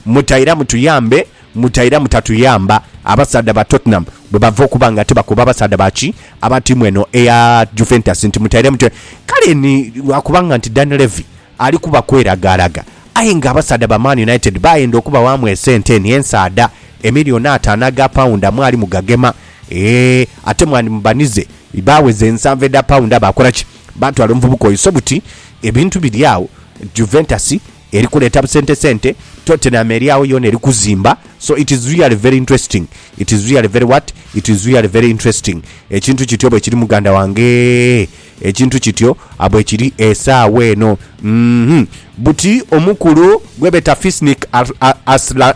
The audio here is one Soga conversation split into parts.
Mutaira mutuyambe, mutaira mutatuyamba, abasaadha ba Tottenham bwe bava okuba nga tibakoba abasaadha ba ki, aba tiimu eno eya Juventus nti mutaire mutu. Kale ni lwa kubanga nti Dan Levy ali kuba kweragaaraga aye ng'abasaadha ba Man United baayenda okubawaamu esente eno ensaadha, emiliyoni ataano aga paunda mwali mugagema. Eeh, ate mwandimubanize baaweza ensanvu edha paunda baakola ki? Baatwala omuvubuka oiso buti, ebintu biri agho, Juventus Eri kuleeta busente sente, Tottenham eri agho yoona eri kuzimba, so it is really very interesting, it is really very what? it is really very interesting, ekintu kityo bwekiri muganda wangeee, ekintu kityo bwekiri esaawa eno, uhmm. Buti omukulu gwebeeta Fisnik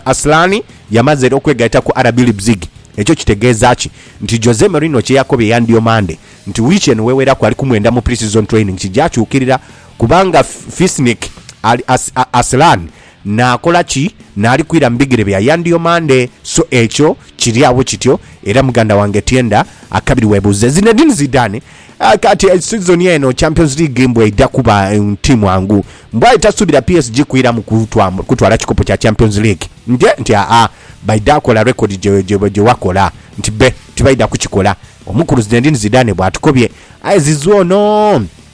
Asllani yamaze era okwegaita ku RB Leipzig, ekyo kitegeeza ki? Nti Jose Mourinho kyeyakobye yandyomaande nti wiiki eno weweraku ali kumwenda mu pre-season training kijakyukirira, Kubanga Fisnik ali as, Aslan naakola ki naali kwira mu bigere bya Yandiomande? So ekyo kiri agho kityo, era muganda wange Tienda akabiri weebuuze. Zinedine Zidane, Ah, kati sizoni eno Champions League mbu eidha kuba tiimu angu. Mbu aye tasuubira PSG kwiramu kutwa, kutwala kikopo kya Champions League. Nte, nti aa, baidha kola rekodi gye, gye, gye wakola. Nti be, tibaidha kukikola. Omukulu Zinedine Zidane bw'atukobye. Aye Zizou ono!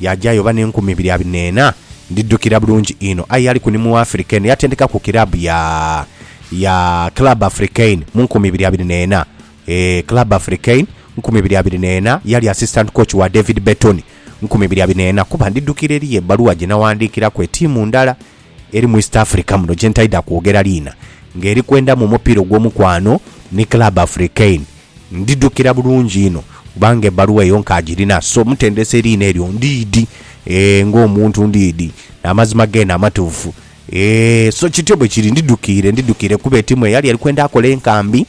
Yaaja yoba n'enkumi ibiri abiri n'ena. Ndidhukira bulungi inho, aye yaliku ni mu Africain, yatendekaku kiraabu ya, ya Club Africain mu nkumi ibiri abiri n'ena. Eeh, Club Africain, nkumi ibiri abiri n'ena, yali assistant coach wa David Bertone, nkumi ibiri abiri n'ena, kuba ndidhukira eriyo ebbaluwa gye nawandiikiraku etiimu ndala. Eri mu East Africa muno gyentaidha kwogera liina nga eri kwenda mu mupiira ogw'omukwano ni Club Africaine. Ndidhukira bulungi inho kubanga ebbaluwa eyo nkagirina so omutendesi eriina eryo ndiidhi eeh ng'omuntu ndiidhi n'amazima geene amatuufu eeh so kityo bwe kiri ndidhukiire ndidhukiire kuba etiimu eyali eri kwenda akola enkambi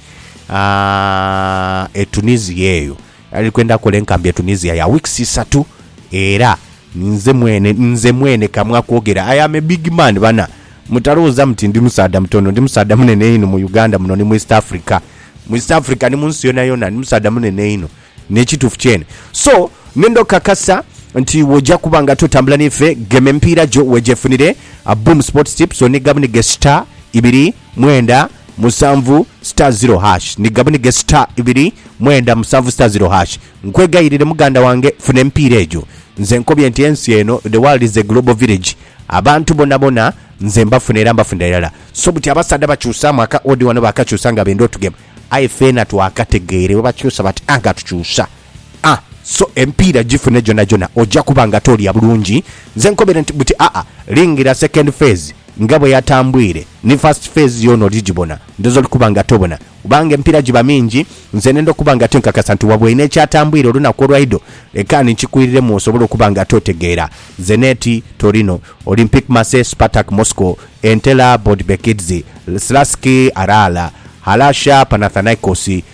aah e Tunisia eyo. Nali kwenda kola enkambi e Tunisia ya weeks isatu era ninze mwene nze mwene kamu akwogera I am a big man bana mutalowoza muti ndi musaadha mutono ndi musaadha munene inho mu Uganda muno ni mu East Africa mu East Africa ni munsi yona yona ndi musaadha munene inho nekitufu kyene so ngenda okakasa nti woja kuba nga totambula nife gema emipiira gyo wejefunire Boom Sports Tips onigabunige star ibiri mwenda musanvu star zero hash ni gabunige star ibiri mwenda musanvu star zero hash nkwegayirire muganda wange funa emipiira egyo nze nkobye nti ensi eno the world is a global village abantu bonabona nze mbafuna era mbafuna irala so buti abasaadha bakyusamu aka odi wano bakakyusa nga benda otugema aye feena twakategeere bwebakyusa bati anga tukyusa a so emipiira gifune gyonhagyonha oja kuba nga toolya bulungi. Nze nkobere nti buti aa lingira second phase nga bwe yatambwire ni first phase yoona oli gibona ndhooza oli kuba nga tobona kubanga emipiira giba mingi nze nenda okuba nga tinkakasa nti waba olina ekyatambwire olunaku olwaidho leka ni nkikwiriiremu osobole okuba nga totegeera Zeneti, Torino, Olympique Marseille Spartak Moscow, Entella, Bodbekidze, Slaski, Arala, Halasha, Panathinaikos,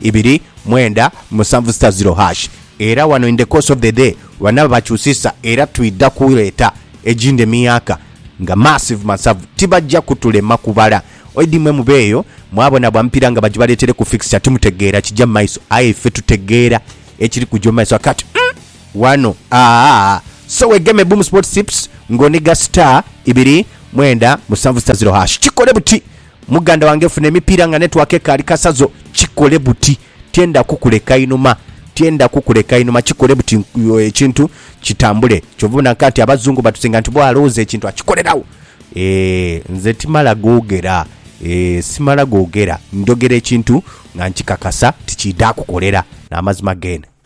ibiri, mwenda, musanvu sita ziro hash. Era wano in the course of the day banaba bakyusisa era twidha kuleeta egindi emiyaaka nga massive masavu tibajja kutulema kubala. Oidi mwe mubeeyo mwabona bwa mupiira nga bagibaleetere ku fixture timutegeera kija mu maiso aye iffe tutegeera ekiri kuja mu maiso akati umm wano aah so wegeme Boom Sports Tips ng'oniga sita ibiri, mwenda, musanvu sita ziro hash kikole buti. Muganda wange funa emipiira nga network ekaali kasazo kikole buti tyenda kukuleka inhuma tyenda kukuleka inhuma kikole buti ekintu kitambule kyova obona nkanti abazungu batusinga nti bwo alowoza ekintu akikolerawo eeh nze timala gogera eeh simala gogera njogera ekintu nga nkikakasa ti kidha kukolera namazima gene.